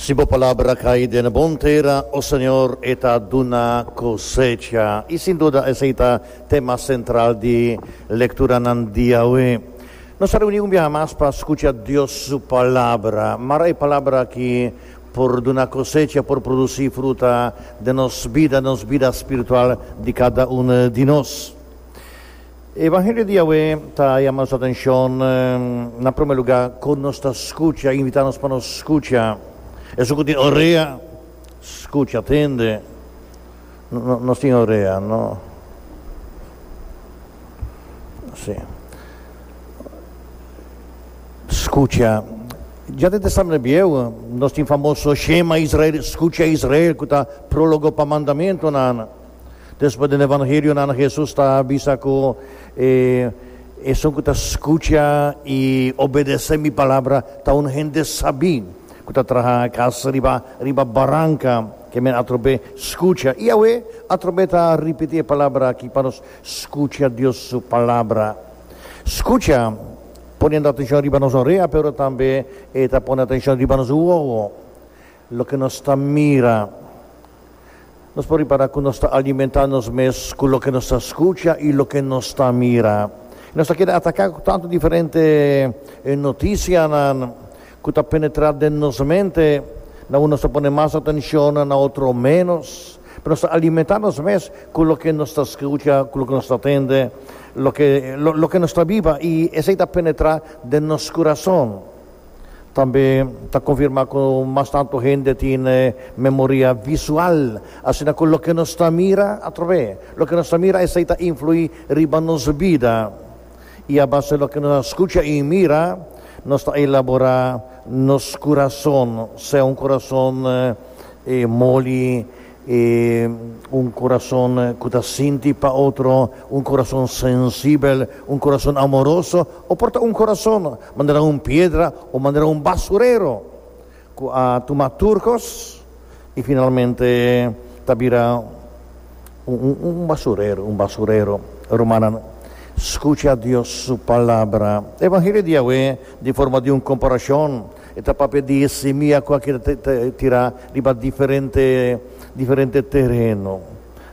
Si bo palabra cai den bon tera, o Señor, e ta duna cosecha. I sin duda esei ta tema central di lecturanan diawe. Nos a reuni un biaha mas pa scucha Dios su Palabra. Mara e palabra aki por duna cosecha, por produci fruta den nos bida, den nos bida spiritual di cada un di nos. E evangelio di awe ta yama nos atencion na prome lugar con nos ta scucha, invita nos pa nos scucha. Esun cu tin orea, scucha, tende. Nos tin orea, no? Si. Scucha. Ja den Testamento Bieu nos tin famoso Shema Israel, Scucha Israel, cu ta prologo pa mandamentonan. Despues den e Evangelionan Hesus ta bisa ku e esun ku ta skucha i obedesé mi palabra ta un hende sabí ku ta traha kas riba riba baranka. Ke men atrobé skucha i awe atrobé ta ripití e palabra akí pa nos skucha Dios su palabra. Skucha poniendo atenshon riba nos orea pero tambe e ta pone atenshon riba nos wowo. Loke nos ta mira. Nos por ripará ku nos ta alimentá nos mes ku loke nos ta skucha i loke nos ta mira. I nos ta keda ataká ku tantu diferente notisianan ku ta penetrá den nos mente. Na un nos ta pone mas atenshon, na otro ménos. Pero nos ta alimentá nos mes ku loke nos ta skucha, ku loke nos ta tende, loke nos ta biba i esei ta penetrá den nos kurason. Tambe ta konfirmá ku mas tantu hende tin e memoria visual, asina ku loke nos ta mira atrabes loke nos ta mira esei ta influí riba nos bida. I a base loke nos a skucha i mira nos ta elaborá nos kurason, sea un kurason moli, E un corazon cu ta sinti pa otro, un corazon sensibel, un corazon amoroso, o por ta un corazon manera un piedra o manera un basurero cu a tuma tur cos y finalmente ta bira un basurero, un basurero. Rumannan, scucha Dios su Palabra. Evangelio di Yahweh di forma di un comparacion. E ta papia di e simia ku a keda tirá riba diferente diferente tereno,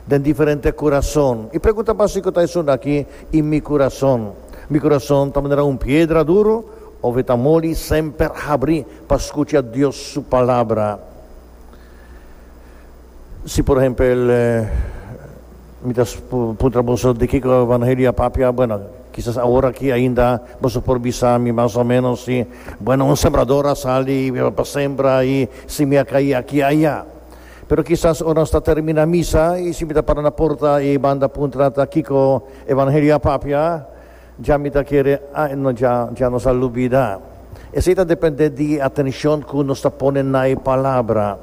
den diferente kurason. E pregunta básiko ta esun aki, I mi kurason? Mi kurason ta manera un piedra duru òf e ta moli i semper habri pa skucha Dios su palabra? Si por ehempel mi ta puntra boso di kiko Evangelio a papia, bueno, kisas awor aki ainda boso por bisa mi mas o menos si, bueno, un sembrador a sali pa sembra i simi a kai aki i aya. Pero kisas ora nos ta termina misa i si mi ta para na porta i banda puntra ta kiko Evangelio a papia, dja mi ta kere, ai no, dja, dja nos a lubida. Esei ta depende di e atencion ku nos ta pone na e palabra.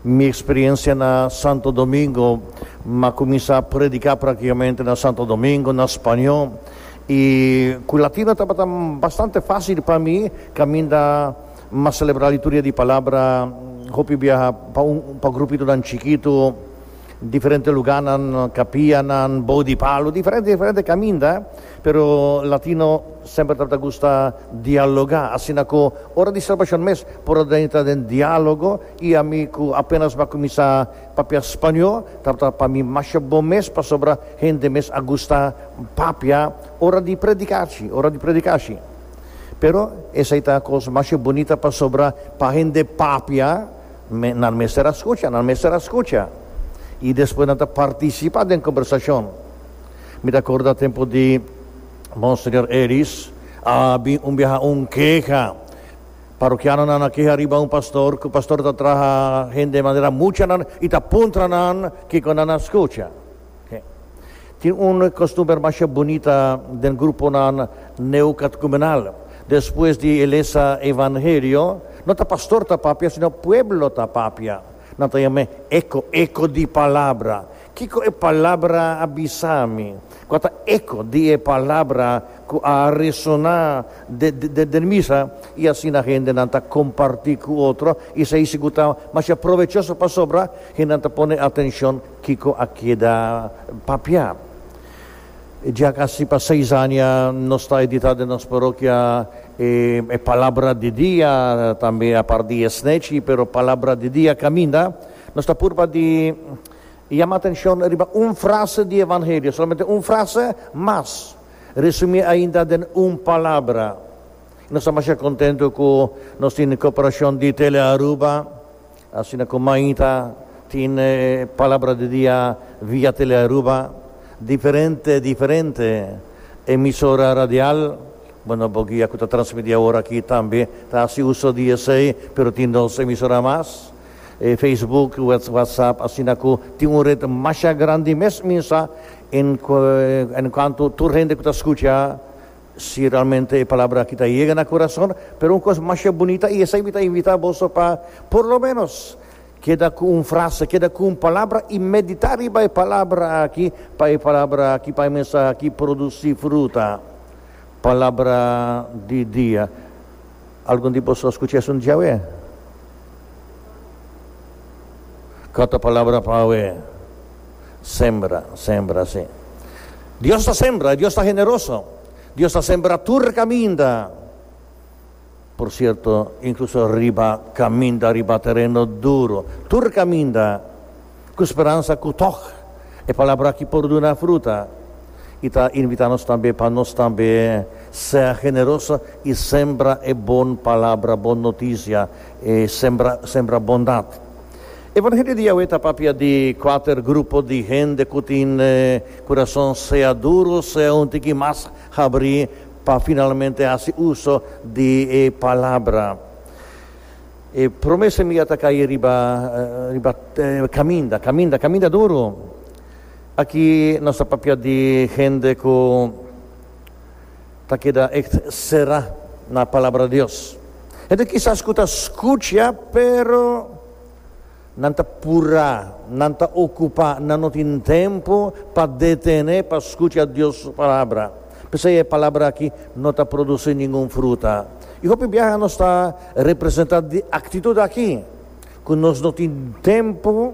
Mi experiencia na Santo Domingo, m'a cuminsa predica practicamente na Santo Domingo na Spaño y cu latino tabata bastante facil pa mi, caminda m'a celebra liturgia di Palabra hopi biaha pa un grupitonan chiquito. Diferente luganan, kapianan, bou di palu, diferente diferente kaminda, pero latino semper tabata gusta dialoga, asina ku ora di salbashon mes por a entra den dialogo, i ami ku apenas bo a kuminsá papia spañó tabata pa mi masha bon mes pasobra hende mes a gusta papia ora di predikashi, ora di predikashi, pero esei ta kos masha bunita pasobra pa hende papia. Me, nan mester a scucha, nan mester a scucha. Y despues nan ta participa den conversacion. Mi ta corda tempo di Monseñor Ellis, a bin un biaha un keha. Parokianonan a keha riba un pastor, cu pastor ta traha hende manera mucha nan y ta puntra nan kico nan a scucha. Tin un kostumber masha bunita den gruponan neokatekumenal. Despues di e lesa Evangelio, no ta pastor ta papia, sino pueblo ta papia. Nan ta yam'é eko, eko di palabra. Kiko e palabra a bisa mi? Kua ta eko di e palabra ku a resoná den misa? I asina hendenan ta kompartí ku otro, i esei sigur ta masha provechoso pasobra hendenan ta pone atenshon. Kiko a keda papia? Dja kasi pa seis aña nos ta editá den nos parokia e Palabra di Dia, tambe apart di e Snèchi, pero Palabra di Dia kaminda nos ta purba di yama atenshon riba un frase di Evangelio, solamente un frase, mas resumié ainda den un palabra. I nos ta masha kontentu ku nos tin koperashon di Tele Aruba. Asina ku Maita tin e Palabra di Dia via Tele Aruba, diferente diferente emisora radial, bo no bo guia ku ta transmití awor aki tambe ta hasi uso di esei, pero tin dos emisora mas, e Facebook, WhatsApp, asina ku tin un ret masha grandi mes minsa en en kuanto tur hende ku ta skucha. Si realmente e palabra aki ta yega na kurason, pero un kos masha bunita i esei mi ta invitá boso pa por lo ménos keda ku un frase, keda ku un palabra i meditá riba e palabra aki pa e palabra aki, pa e mensahe aki produsí fruta. Palabra di dia. Algun di boso a skucha esun dja awe? Kua ta palabra pa awe? Sembra, sembra, si. Dios ta sembra i Dios ta generoso. Dios ta sembra tur kaminda, por sierto, inkluso riba kaminda, riba tereno duru. Tur kaminda Ku speransa ku tòg e palabra aki por duna fruta, i ta invitá nos tambe pa nos tambe ser generoso i sembra e bon palabra, bon notisia, e sembra sembra bondat. Evangelio di Yahweh ta papia di kuater grupo di hende ku tin kurason sea duru sea un tiki mas habrí pa finalmente hasi uso di e palabra. E prome semia ta kai riba riba caminda, caminda, caminda duro. Aki nos ta papia di hende cu ta keda echt cera na Palabra di Dios. Hende kisas cu ta scucha pero. Nan ta purá, nan ta okupá, nan no tin tempu pa detené pa skucha Dios su Palabra. P'esei e palabra akí no ta produsí ningun fruta. I hopi biaha nos ta representá di aktitut akí, ku nos no tin tempu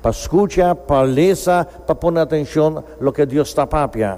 pa skucha, pa lesa, pa pone atenshon loke Dios ta papia.